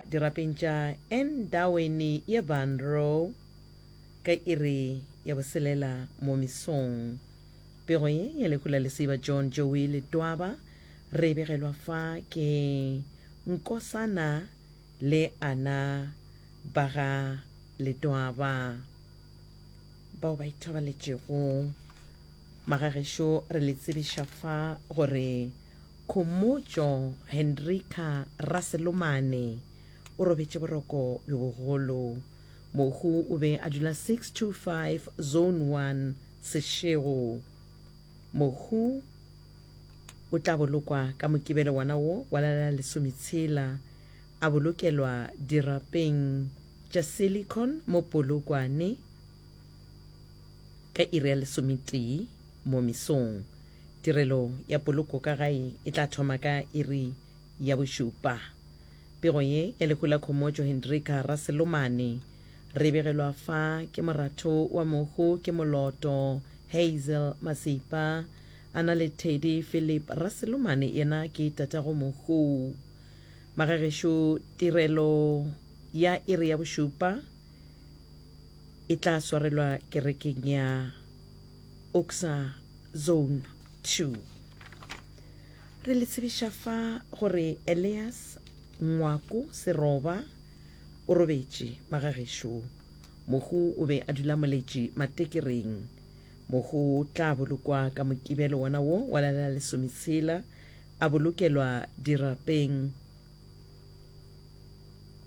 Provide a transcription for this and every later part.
Dirapeng tša Endaweni ye Banro ka iri ya boselela mo mesong. Pego ye ya lehu la lesiba John Joey Letwaba re e begelwa fa ke Nkosana le Ana ba ga Letwaba bao ba ithobaletšego. Magagešo re le tsebiša fa gore. Khomotšo Hendrika Raselomane o robetše boroko bjo bogolo. Mohu o be a dula 625 Zone 1 Seshego. Mohu o tla bolokwa ka Mokibelo wona wo wa la la lesometshela, a bolokelwa dirapeng tša Silicon mo Polokwane ka iri ya lesometee mo mesong. Tirelo ya poloko ka gae e tla thoma ka iri ya bošupa. Pego ye ya lehu la Khomotšo Hendrika Raselomane re e begelwa fa ke moratho wa mohu ke moloto Hazel Masipa a na le thedi Philip Raselomane yena ke tatago mohu. Magagešo tirelo ya iri ya bošupa e tla swarelwa kerekeng ya. Oxa Zone Two. Re le tsebiša fa gore Elias Ngwaku Seroba o robetše ba ga gešo mohu o be a dula moletši matekereng. Mohu o tla bolokwa ka Mokibelo wona wo wa la la lesometshela a bolokelwa dirapeng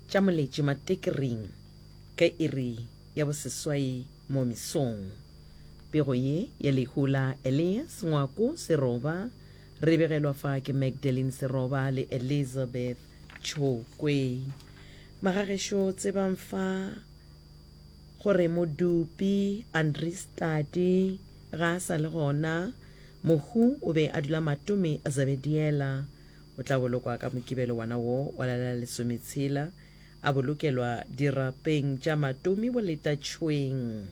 tša moletši matekereng ge e re ya boseswai mo mesong. Pego ye ya lehu la Elias Ngwako Seroba re begelwa fa ke Magdalene Seroba le Elizabeth Tšhokwe. Magagešo tsebang fa gore Modupi Andries Tladi ga a sa le gona, mohu o be a dula Matome Zebediela. O tla bolokwa ka Mokibelo wana wo wa la la lesometshela A bolokelwa dirapeng tša matomi boletatšweng.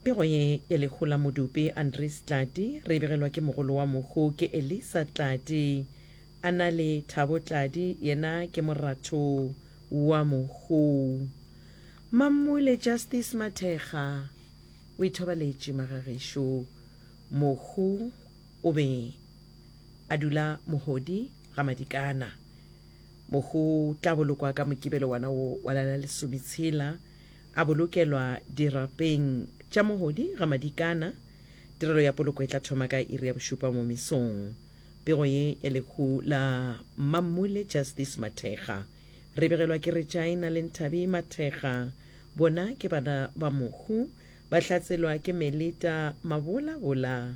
Pego ye ya lehu la Modupi Andries Tladi re e begelwa ke mogolo wa mohu ke Elisa Tladi. A na le Thabo Tladi yena ke moratho wa mohu. Mammule Justice Mathekga o ithobaletše magagešo mohu. o be a dula mohodi ga Madikana. Mo go tla bolokwa ka Mokibelo wana wo wa la la lesometshela, a bolokelwa dirapeng tša mohodi ga Madikana. Tirelo ya poloko e tla thoma ka iri ya bošupa mo mesong. Pego ye ya lehu la Mmammule Justice Mathekga, re begelwa ke Regina le Nthabi Mathekga. Bona ke bana ba mohu, ba hlatselwa ke Melita Mabolabola.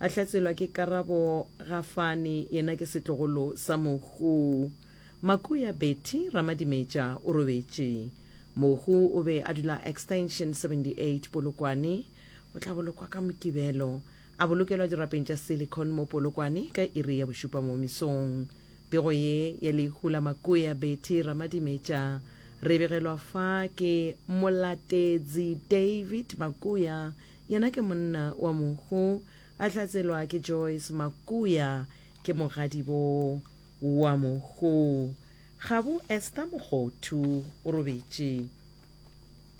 A hlatselwa ke Karabo Gafane, yena ke setlogolo sa Mohu. Makuya Betty Ramadimetša o robetše. Mohu o be a dula extension 78 Polokwane. O tla bolokwa ka Mokibelo. A bolokelwa dirapeng tša Silicon mo Polokwane ka iri ya bošupa mo mesong. Pego ye ya lehu la Makuya Betty Ramadimetša re e begelwa fa ke Molatetsi David Makuya Yena ke monna wa mohu a hlatselwa ke Joyce Makuya ke mogadibo wa mohu gabo Esther Mogothu o robetše.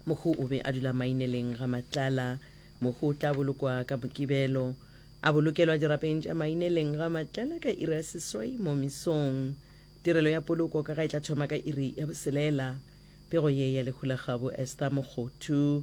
Mohu o be a dula Maineleng ga Matlala. Mohu o tla bolokwa ka Mokibelo. A bolokelwa dirapeng tša Maineleng ga Matlala ka iri ya seswai mo mesong. Tirelo ya poloko ka ga e tla thoma ka iri ya boselela. Pego ye ya lehu la gabo Esther Mogothu.